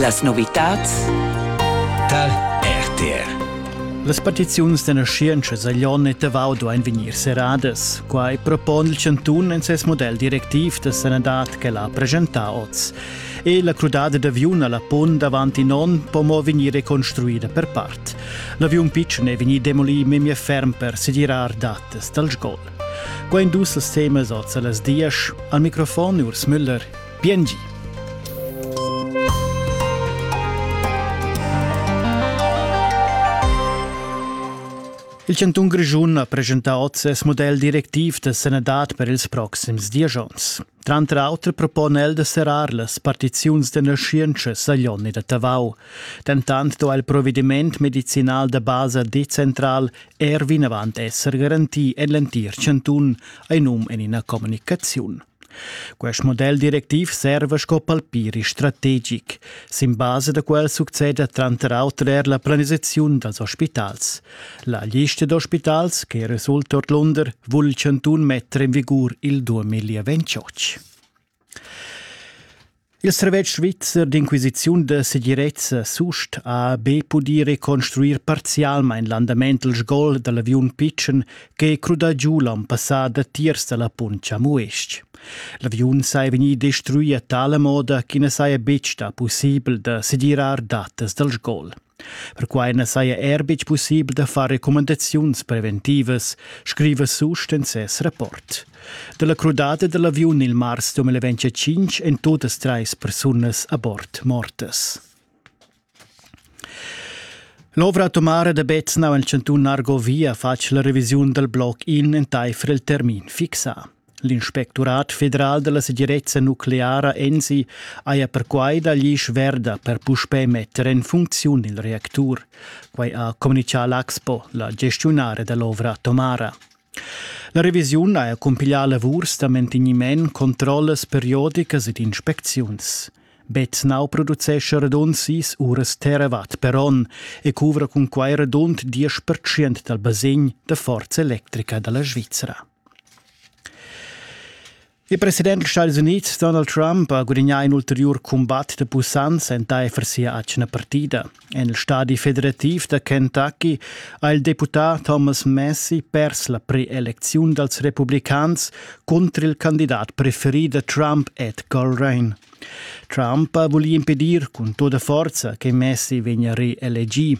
Las novitads tar RTR. Las petiziuns da naschientscha Saglion e Tavau duain vegnir serradas. Quai propon il chantun en ses model directiv da sanadad ch'el ha presentà oz. E la crudada d'aviun a la punt davant in onn po mo vegnir reconstruida per part. L'aviun pitschen è vegnì demolì memia ferm per segirar datas dal sgol. Quai dus temas oz a las dias. Al microfon Urs Müller Biengi. Il Cantun Grischun ha presentà oz ses model directiv da sanadad per ils proxims diesch onns. Tranter auter propon el da serrar las partiziuns d'energientscha Saglion e da Tavau. Dentant do il provediment medicinal da basa decentral er vinavant esser garantì en l'entir Chantun, ein um en ina communicaziun. Quest model directiv serva sco palpiri strategic. Sin basa da quel succeda tranter auter er la planisaziun dals ospitals. La lista d'ospitals che resulta ordlunder vul il chantun metter in vigur il 2028. Il servetsch svizzer d'inquisiziun da segirezza SUST ha be pudì reconstruir parzialmain l'andament il sgol da l'aviun pitschen ch'è crudà giu l'an passà datiers da la punt Chamues-ch. L'aviun saja vegnì destruì a tala moda ch'i na saja betg stà pussibel da segirar datas dal sgol. Perquai na saja er betg pussibel da far recumandaziuns preventivas, scriva Sust en ses rapport. Da la crudada da l'aviun il mars 2025 èn totas trais persunas a bord mortas. L'ovra atomara da Beznau en chantun Argovia fatg la revisiun dal bloc in entaifer il termin fixà. L'inspectorat federal dalla segirezza nucleara ENSI haja perquai da glisch verda per puspè metter en funcziun il reactur. Quai ha communichà l'Axpo, la gestiunare dell'ovra atomara. La revisiun haja cumpiglià lavurs da mantegniment, controllas periodicas ed inspecziuns. Betznau producescha radund sis uras terawatt per onn e cuvra cun quai radund 10% dal basegn da forza electrica da la Svizra. Il president dals Stadis Unids Donald Trump ha gudagnà in ulteriur cumbat da pussanza entaifer sia atgna partida. En il stadi federativ da Kentucky ha il deputà Thomas Massie pers la pre-elecziun dals republicans cunter il candidat preferì da Trump Ed Colerain. Trump ha vulì impedir cun tutta forza che Messi vegnia reelegì.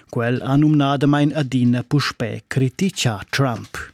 Quel ha numnadamain adina puspè criticà Trump.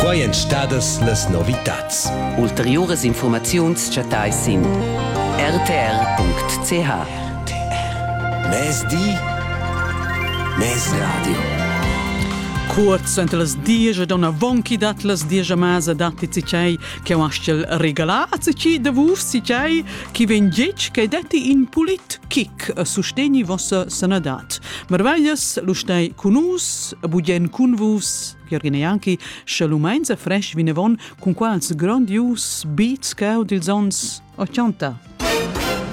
Quai èn stadas las novitads. Ulteriuras infurmaziuns chattais sin rtr.ch. Mezdi, mezradio. Kurz ent las diesch ed ona vonchi dat las diesch masa datti cicei che astgel regalar a cici de vus cicei chi ven gec che detti in pulit kick a sustegni vossa sanadat. Marvaglias lu stai cun nus e bugien cun vus, Jürgen Janki, sche lu meinsa fresh vinavon cun quals grandius beats cau dils ons 80.